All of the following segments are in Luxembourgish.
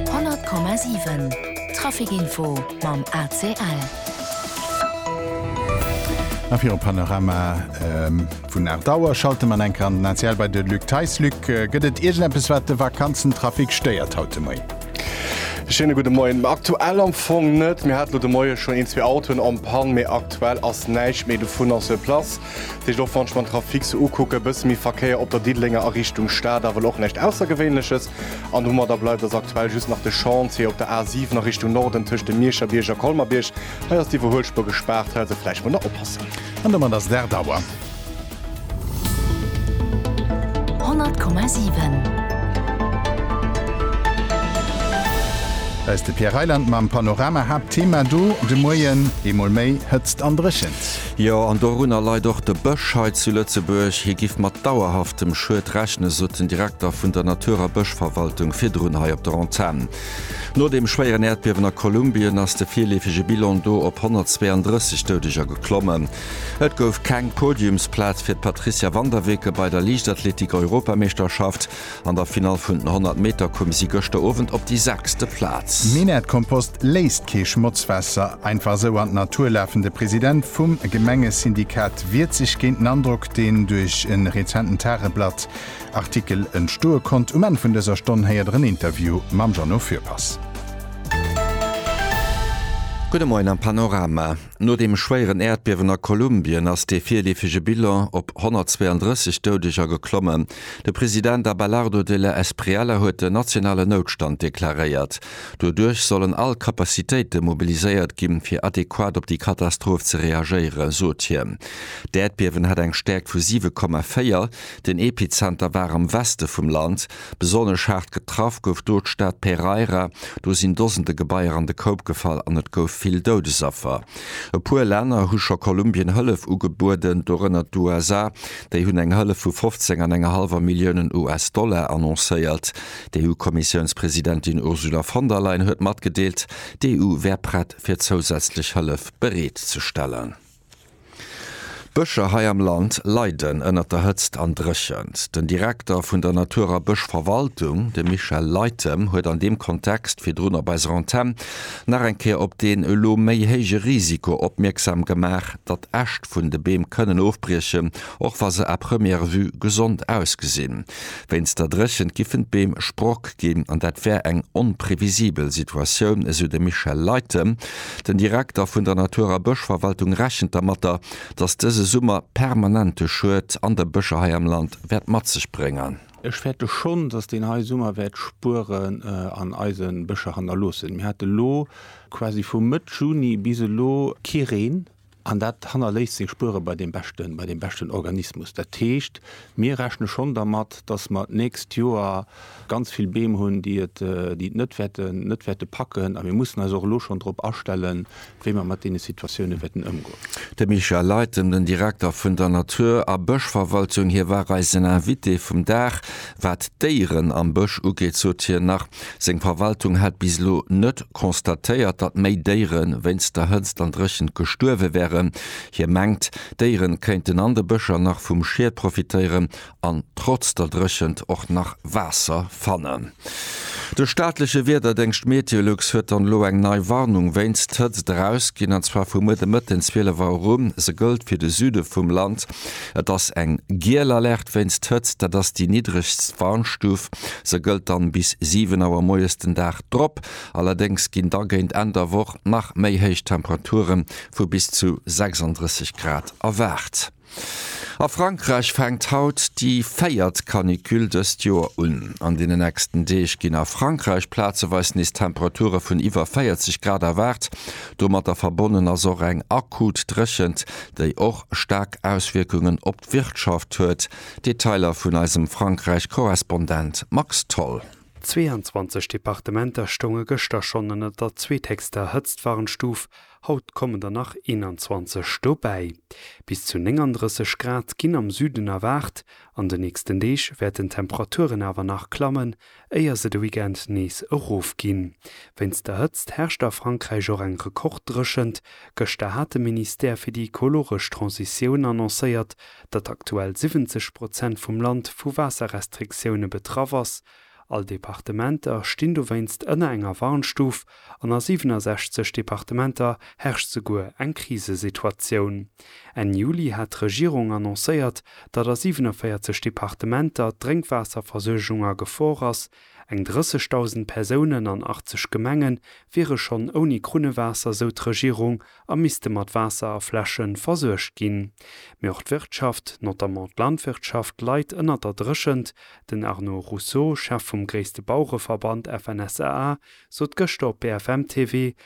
100,7 Trafic info mam ACL. A fir e Panorama vun Aart Auer schalte mer eng Kéier an den ACL bei de Luc Theis. Luc, gëtt et iergendeppes, wat de Vakanzentrafic stéiert haut de Moien? E schéine gudde Moien. Aktuell am Fong net. Mir hate lo de Moie schonn een, zwee Autoen en panne, mee aktuell ass näischt méi dovunner sur place. Heescht och wann ech mer den Trafic sou ukucken, e bësse méi Verkéier op der Diddelenger a Richtung Stad, awer elo och näischt Aussergewéinleches. An wou mer da bleiwen, ass aktuell just nach de Chantier op der A 7 a Richtung Norden tëscht dem Miecherbierg a Colmer-Bierg. Hei ass d'Iwwerhuelspuer gespaart, hei also vläicht mol nach oppassen. An domat ass et 8 Auer. 100,7. Hei ass de Pierre Reyland mam Panorama. Haaptthema do de Moien, Eemol méi Hëtzt an Dréchent. Jo, an dorunner leit och de Bësch hei zu Lëtzebuerg. Hie giff mat dauerhaftem Schued rechnen, sot den Direkter vun der Natur a Bëschverwaltung virdrun hei op der Antenn. No dem schwéieren Äerdbiewen a Kolumbien ass de virleefege Bilan do op 132 Doudeger geklommen. Et gouf keng Podiumsplaz fir d'Patricia Vanderweken bei der Liichtathletik-Europameeschterschaft. An der Finall vun den 100 Meter koum si gëschter Owend op déi sechste Plaz. Minett Kompost léisst kee Schmotzwässer einfach esou an d'Natur lafen. De President vum Gemengesyndikat wiert sech géint den Androck, deen duerch e rezenten Tageblatt Artikel entstoe konnt. Um Enn vun dëser Stonn héiert der en Interview mam Jeannot Fürpass. Gudde Moien am Panorama. No dem schwéieren Äerdbiewen a Kolumbien ass dee virleefege Bilan op 132 Doudeger geklommen. De President Abelardo Della Espriella huet den nationalen Noutstand deklaréiert. Doduerch sollen all Capacitéite mobiliséiert ginn, fir adequat op déi Katastroph ze reagéieren, sot hien. D'Äerdbiewen hat eng Stäerkt vu 7,4. Den Epizenter war am Weste vum Land. Besonnesch haart getraff gouf do d'Stad Pereira. Do sinn Dosende Gebaier an de Koup gefall an et gouf vill Doudesaffer. E puer Länner hu scho Kolumbien Hëllef ugebueden, dorënner d'USA. Déi hunn eng Hëllef vu 15 an enger hallwer Milliounen US-Dollar annoncéiert. D'EU-Kommissiounspresidentin Ursula von der Leyen huet matgedeelt, d'EU wär prett fir zousätzlech Hëllef bereet ze stellen. D'Bëscher hei am Land leiden ënnert der Hëtzt an Dréchent. Den Direkter vun der Natur a Bëschverwaltung, de Michel Leytem, huet an deem Kontext virdrun op eiser Antenn nach eng Kéier op deen elo méi héije Risiko opmierksam gemaach, datt Äscht vun de Beem kënnen ofbriechen, och wa se à première vue gesond ausgesinn. Wéinst der Dréchent giffen d'Beem Sprock ginn an dat wär eng onprevisibel Situatioun, esou de Michel Leiten. Den Direkter vun der Natur a Bëschverwaltung rechent dermatter, datt dëse Summer permanente Schued an de Bëscher hei am Land wäert mat sech bréngen. Ech fäerte schonn, datt deen hei Summer wäert Spueren an eise Bëscher hannerloossen. Mir hate lo quasi vu Mëtt Juni bis elo kee Reen. An dat hannerléisst seng Spuere bei deem beschten, bei deem beschten Organismus. Dat heescht, mir rechne schonn dermat, dass mer d'nächst Joer ganz vill Beem hunn, déi et, déi et net wäerten, net wäerte packen. A mir mussen eis och elo schonn drop astellen, wéi mer mat deene Situatioune wäerten ëmgoen. De Michel Luyten, den Direkter vun der Natur a Bëschverwaltung, hie war eisen Invité vum Dag. Wat d'Déieren am Bësch ugeet, sot hien nach, Seng Verwaltung hätt bis elo net constatéiert, datt méi Déiere wéinst der Hëtzt an Dréchent gestuerwe wären. Hie mengt, d'Déiere kéinten an de Bëscher nach vum Schied profitéieren an trotz der Dréchent och nach Waasser fannen. De staatleche Wiederdéngscht Meteolux huet dann elo eng nei Warnung wéinst Hëtzt erausginn, an zwar vu muer de Mëtten 12 Auer u. Se gëllt fir de Süde vum Land. Et ass eng giel Alerte wéinst Hëtzt, dat ass déi niddregst Warnstuf. Se gëllt dann bis 7 Auer moies den Dag drop. Allerdéngs ginn da géint Enn der Woch nach méi héich Temperature vu bis zu 36 Grad erwaart. A Frankräich fänkt haut déi véiert Canicule dëst Joer un. An deenen nächsten Deeg ginn a Frankräich plazeweis nees Temperature vun iwwer 40 Grad erwaart. Domatter verbonnen ass och eng akut Dréchent, déi och staark Auswierkungen op d'Wirtschaft huet. Detailer vun eisem Frankräich-Korrespondent Max Tholl. 22 Departementer stounge gëschter schonn ënner der zweethégster Hëtztwarnstuf, haut kommen der nach 21 dobäi. Bis zu 39 Grad ginn am Süden erwaart. An de nächsten Deeg wäerten d'Temperaturen awer nach klammen, éier se de Weekend nees erofginn. Wéinst der Hëtzt herrscht a Frankräich och eng Rekorddréchent. Gëschter hat de Ministère fir déi ekologesch Transitioun annoncéiert, datt aktuell 70 Prozent vum Land vu Waasserrestriktioune betraff ass. All Departementer stinn dowéinst ënner enger Warnstuf an a 67 Departementer herrscht souguer eng Krisesituatioun. Enn Juli hat d'Regierung annoncéiert, datt a 47 Departementer d'Drénkwaasserversuergung a Gefor ass, eng 30.000 Persounen an 80 Gemenge wiere schonn ouni Krunnewaasser, sou d'Regierung, a misste mat Waasser a Fläsche versuergt ginn. Mee och d'Wirtschaft, notamment d'Landwirtschaft, leit ënnert der Dréchent. Den Arnaud Rousseau, Chef vum gréisste Bauereverband FNSEA, sot gëschter op BFM TV,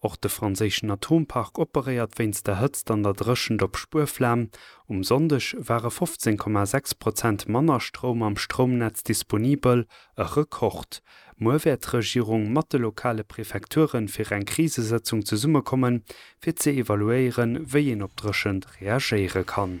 Och de franséischen Atompark operéiert wéinst der Hëtzt an der Dréchent op Spuerflam. Um Sonndeg ware 15,6 Prozent manner Stroum am Stroumnetz disponibel, e Rekord. Muer wäert d'Regierung mat de lokale Prefekture fir eng Krisesëtzung zesummekommen, fir ze evaluéieren, wéi een op d'Dréchent reagéiere kann.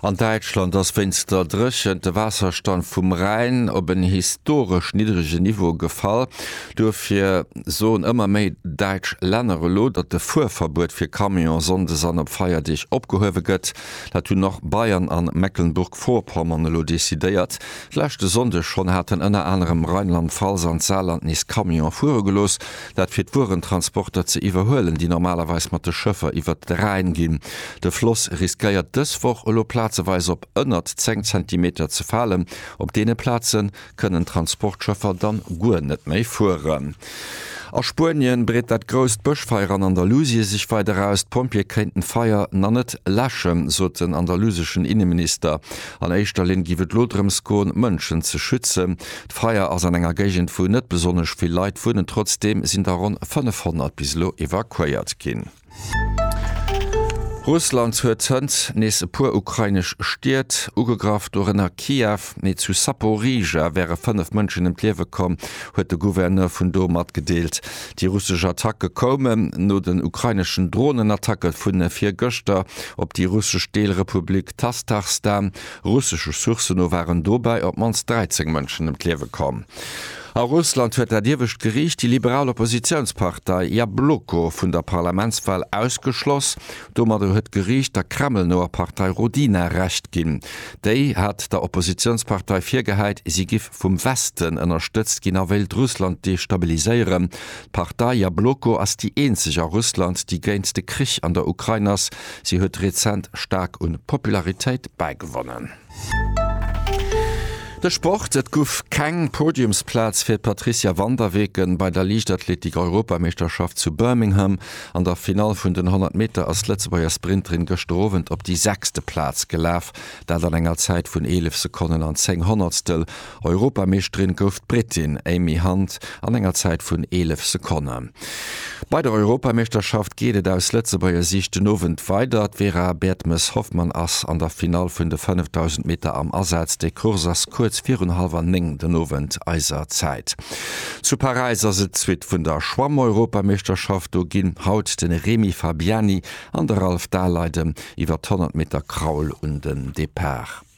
An Däitschland ass wéinst der Dréchent de Waasserstand vum Rhäin op en historesch niddrege Niveau gefall. Duerfir soen ëmmer méi däitsch Länner elo, datt de Fuerverbuet fir Camion sonndes an op Feierdeeg opgehuewe gëtt. Dat hunn och Bayern an Mecklenburg-Vorpommern elo decidéiert. Leschte Sonndeg schonn haten ënner anerem Rheinland-Pfalz an d'Saarland nees Camionen fuere gelooss, dat fir d'Wuerentransporter ze iwwerhuelen, déi normalerweis mat de Schëffer iwwert de Rhäin ginn. De Floss riskéiert dës Woch elo plazeweis op ënnert 10 Zentimeter ze falen. Op deene Plaze kënnen d'Transportschëffer dann guer net méi fueren. A Spuenien breet dat grousst Bëschfeier an Andalusie sech weider aus. D'Pompjeeë kéinten d'Feier nach net läschen, sot den andaluseschen Inneminister. An éischter Linn géif et elo drëms goen, Mënschen ze schützen. D'Feier ass an enger Géigend wou net besonnesch vill Leit wunnen, trotzdeem sinn der ronn 500 bis elo evakuéiert ginn. Russland huet hënt nees e puer ukrainesch Stied ugegraff, dorënner Kiew. Mee zu Saporizhzhia wäre 5 Mënschen ëm d'Liewe komm, huet de Gouverneur vun do matgedeelt. Déi russesch Attacke koumen no den ukraineschen Dronenattacke vun virgëschter op déi russesch Deelrepublik Tastarstan. Russesche Sourcen no waren dobäi op d'mannst 13 Mënschen ëm d'Liewe komm. A Russland huet dat iewescht Geriicht déi liberal Oppositiounspartei Jabloko vun der Parlamentswal ausgeschloss. Domadder huet d'Geriicht der Kreml-noer Partei Rodina Recht ginn. Déi hat der Oppositiounspartei virgehäit, si giff vum Westen ënnerstëtzt ginn a wéilt Russland destabiliséieren. D'Partei Jabloko ass déi eenzeg a Russland, déi géint de Krich an der Ukrain ass, Si huet rezent staark un Popularitéit bäigewonnen. De Sport, Et guff keng Podiumsplaz fir d'Patricia van der Weken bei der Liichtathletik-Europameeschterschaft zu Birmingham. An der Finall vun den 100 Meter ass d'Lëtzebuerger Sprinterin gëschter Owend op déi sechste Plaz gelaf, dat an enger Zäit vun 11 Sekonnen an 10 Honnertstel. Europameeschterin gouf d'Brittin Amy Hunt an enger Zäit vun 11 Sekonne. Bei der Europameeschterschaft geet et aus Lëtzebuerger Siicht den Owend weider. D'Vera Bertmes-Hoffmann ass an der Finall vun de 5000 Meter am Asaz. Déi Course ass kuerz virun hallwer néng den Owend eiser Zäit. Zu Paräis ass et d'Suite vun der Schwammeuropameeschterschaft. Do ginn haut de Remi Fabiani an de Ralph Dahleiden iwwer d'Honnertmeterkraul un den Depart.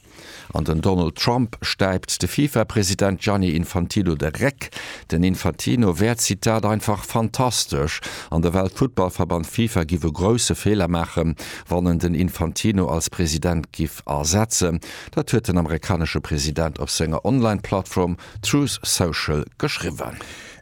An den Donald Trump stäipt de Fifa-President Gianni Infantino de Réck. Den Infantino wär, Zitat, einfach fantastesch an de Weltfuttballverband Fifa giff e grousse Feeler maachen, wann en den Infantino als President giff ersetzen. Dat huet den amerikanesche President op senger Online-Plattform Truth Social geschriwwen.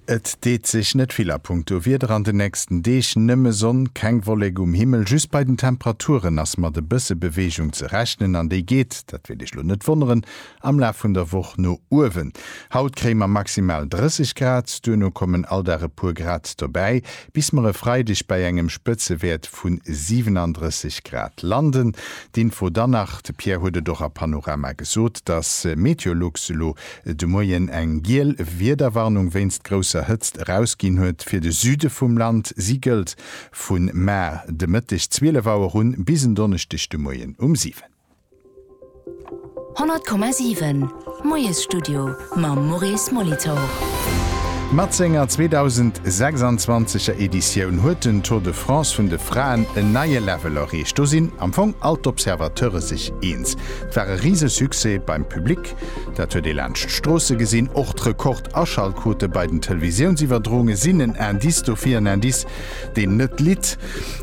Et deet sech net vill a punkto Wieder an den nächsten Deeg, nëmme Sonn, keng Wollek um Himmel. Just bei den Temperaturen ass mat e bësse Beweegung ze rechnen an déi geet, dat wäert Iech lo net wonneren, am Laf vun der Woch no uewen. Haut kréie mer maximal 30 Grad, duerno kommen all Dag e puer Grad dobäi, bis mer e Freideg bei engem Spëtzewäert vu 37 Grad landen. D'Info dann nach, de Pierre huet et och a Panorama gesot, dass Meteolux elo de Moien eng giel Wiederwarnung wéinst grousser Hëtzt erausginn huet fir de Süde vum Land. Si gëllt vu mar de Mëtteg 12 Auer un bis en Donneschdeg de Moien um 7. 100,7 Moiesstudio mam Maurice Molitor. Mat senger 2026 er Editioun huet den Tour de France vun de Fraen en neie Level erreecht. Do sinn am Fong all d'Observateure sech eens, et war e Risesuccès beim Public. Dat huet ee laanscht d'Stroosse gesinn. Och d'Rekord-Aschaltquote bei den Televisiounsiwwerdrounge sinn en Indice dofir, en Indice, deen net litt.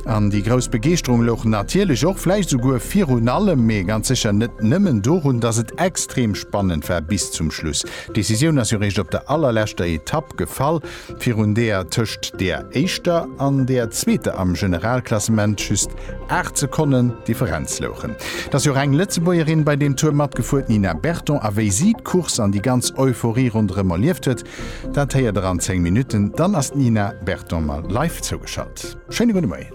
An déi grouss Begeeschterung louch natierlech och, vläicht souguer virun allem, mee ganz sécher net nëmmen dorun, dass et extrem spannend war bis zum Schluss. D'Decisioun ass jo réischt op der allerleschter Etapp gefall. virun deer tëscht deer éischter an deer zweeter am Generalklassement just 8 Sekonnen Differenz louchen. Et ass jo reng Lëtzebuergerin bei deem Tour matgefuer, d'Nina Berton, a wéi si d'Course an déi ganz Euphorie ronderëm erlieft huet, dat héiert der an 10 Minutten. Dann ass d'Nina Berton mer live zougeschalt. Schéine gudde Moien.